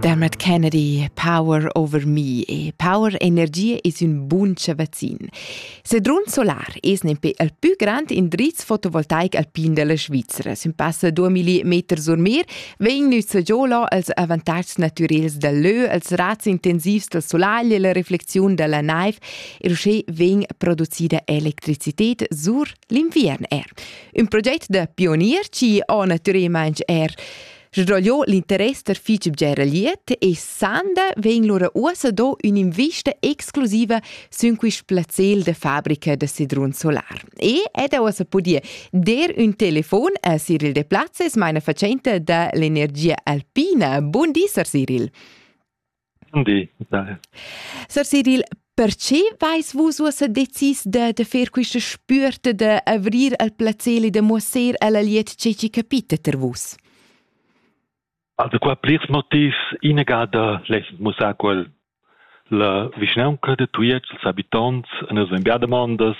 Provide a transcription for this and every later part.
Dermot Kennedy, Power Over Me e Power Energia es ün bun chavazzin. Sedrun Solar es nempe il pü grand indriz fotovoltaic alpin della Svizzera. Sün passa 2000 meter sur mer vegn nüzza giolo als avantatgs natürels del lö, als razs intensivs del solar e la reflexiun della naiv e uschè vegn producida electricità sur l'inviern er. Ün proget da pionier chi ho natüralmaing er sdrogliò l'interess da fich bger liet e sanda vegn lura uossa do ün'invista exclusiva sün quist plazzel da fabrica da sedrun solar. E ed ha uossa pudì der ün telefon a Cyril Deplazes, meina facente da l'energia alpina. Bun di, Sir Cyril. Sir Cyril, perche vais vus uossa decis da, da fer quista spüerta da avrir al placeli da muosser alla liet che chi capita ter vus? Also qua plirs motivs. Inegada less mussar quel la vischnaunca de Tujetsch, els habitonts, nus vegn bia demandas,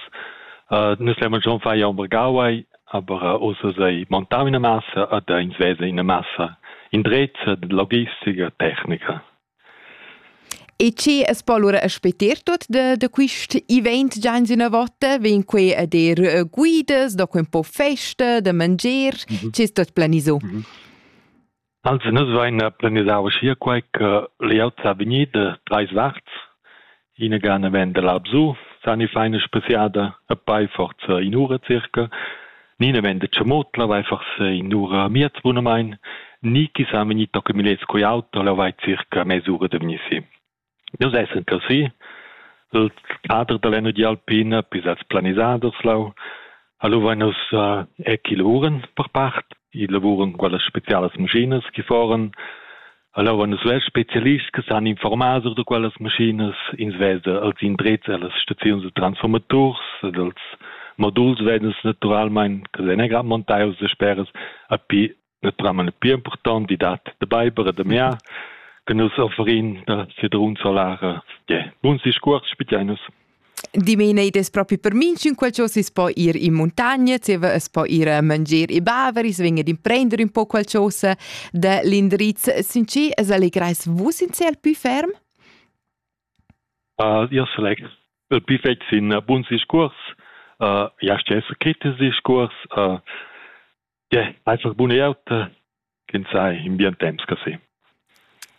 uh, nus levon schon far ja un vergauai, Aber uss eis ei montau ina massa ed ins vesa ina massa indrezza da logistica e tecnica. E che es po allura a speter tuot da, da quist event già in üna vota? Vegn quei a dir eh, guidas, da quel po festa, da mangier, mm -hmm. che ist tot planiso? Mm -hmm. Also nus vain planisau uschia quai che layout sa vegnir da trais varts. Ina gana vegn da là bsu, san i fa ina spesiada e poi forza in'ura circa. Nina vegn da Tschamutla, vai forsa in'ura miez bunamain. Ni chi sa vegnir toccumilets cun auto, la vai circa mes'ura da vegnir si. Nus essan cusì. Il cader da l'energia alpina pisats planisaders leu. Alura vein nus er chi lavuran per part. I lavuran quellas spezialas maschinas chi foran. Alura vein nus svess spezialists che san informar sur da quellas maschinas. Ins vesa els indrezs ellas staziuns da transformaturs ed els moduls vegn nus naturalmein, che vein era montaus dasperas, a pi la trama la pli impurtanta dat da beiber e da miar che nus offerin da Sedrun Solara. Yeah. Buns discuors spitgei nus. Dimena id es propi per minchün quel cho si s'po ir in muntagna, zieva es po ir a mangier i baver, i sven ad imprender un po quel chosa da l'indirizz. Sincer, es allegrais vus in cel pü ferm? Uh, io select il pü fetg sin uh, buns discuors, uh, ja stessa kritisches Discours, uh, Ja, einfach bun'eauta ch'ins sai in bien temps che se.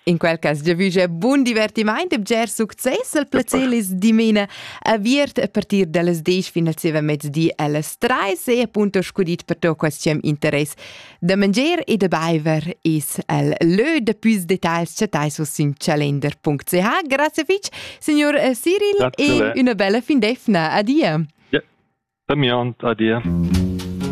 In quel cas giavüscha bun divertimaint e bger success al placelis dimena aviert a partir dallas 10 fin al seva mezdi allas 3 sei appunto scudit per to questiam interess da mangier e da baiver es al lö da püs details chattai su sin calender.ch grazie fich signor eh, Cyril Grazie. e una bella fin defna adia Ja, da mir und adia.